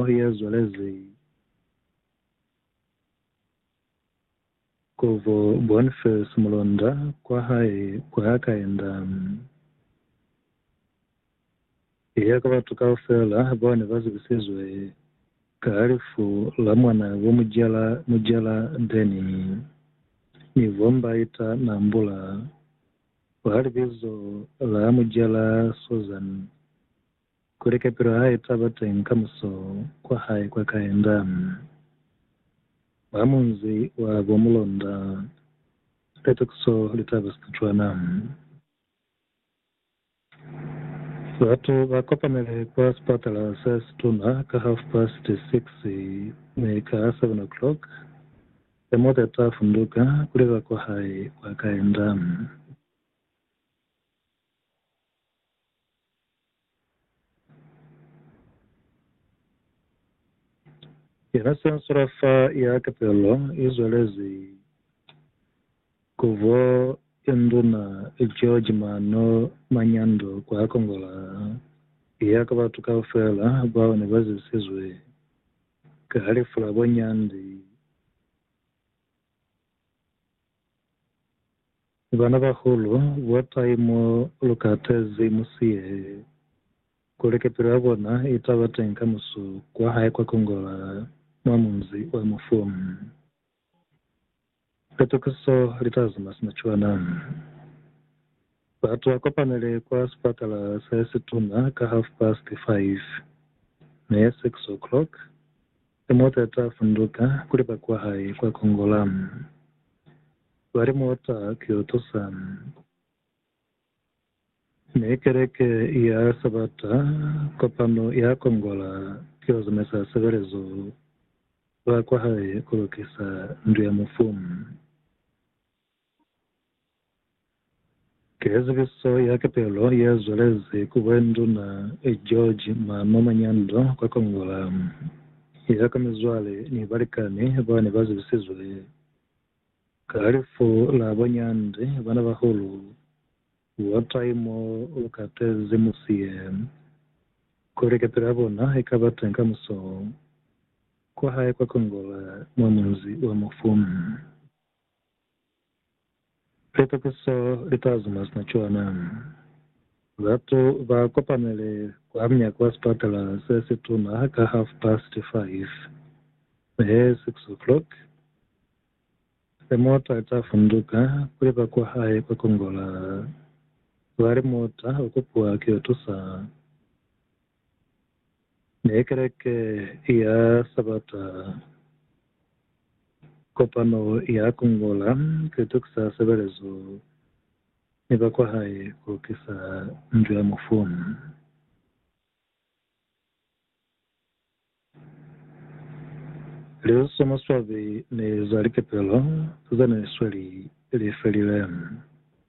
Mwa ye zwelezi, Kovo Bonface mulunda kwa hae kwa Kainda iya ka batu kaufela bao ne ba zibisizwe ka lifu la mwanaa bo Mujela Mujela Denny ni bo Mbaita Nambula kwa libizo la Mujela Susan kuli kapilo hae taba teng ka muso kwa hae kwa kaenda mwa munzi wa bo Mulonda Sipetokiso litaba Setswana. Batu ba kopanele kwa sipatala se situna ka half past six mi ka seven o'clock he mota ta funduka kuli ba kwa hae kwa kaenda. Yena sensora fa ya ketelo i zwelezi kuvo ye nduna George Mano Manyando kwa Kongola ya ka batu kaufela bao ne ba zibisizwe ka lifu la bo Nyandi. Banabahulu, botai mo lu katezi musihe, kuli kepilo ya bona i ta ba teñi ka musu kwa hae kwa kongola mwa munzi wa mufu. Litukiso li ta zama sina cwana. Batu ba kopanele kwa sipatala se situna ka half-past five, mi six o'clock Limuta ta funduka kuli ba kwa hae kwa Kongola ba limuta ku yo tusa mi Keleke ya Sabata kopano ya Kongola ku yo zamaisa sebelezo ba kwa hae ku lukisa ndu ya mufu. Ki zibiso ya kepelo ye zwelezi ku bwe Nduna George Mano Manyando kwa Kongola, ya ka mizwale ni balikani ba ne ba zibisizwe ka lifu la bo Nyandi bana bahulu War Time mo lu katezi musi ye, kuli kepelo ya bona i ka ba teñi ka muso kwa hae kwa Kongola mwa Munzi wa Mufu. Litokiso li t'a zuma sina cwana. Batu ba kopanile kwa munyako wa sipatala se si tuna ka half past five, he six o'clock, he mota i t'a funduka kuli ba kwa hae kwa Kongola. Ba li, Mota u kupiwa ki yo tusa. Ne Keleke ya Sabata kopano ya kungola ze tukisa sebelezo ni ba kwa hae ku lukisa Ndu ya Mufu. Lizo za maswabi ni za likepelo ze ne sweli li felile.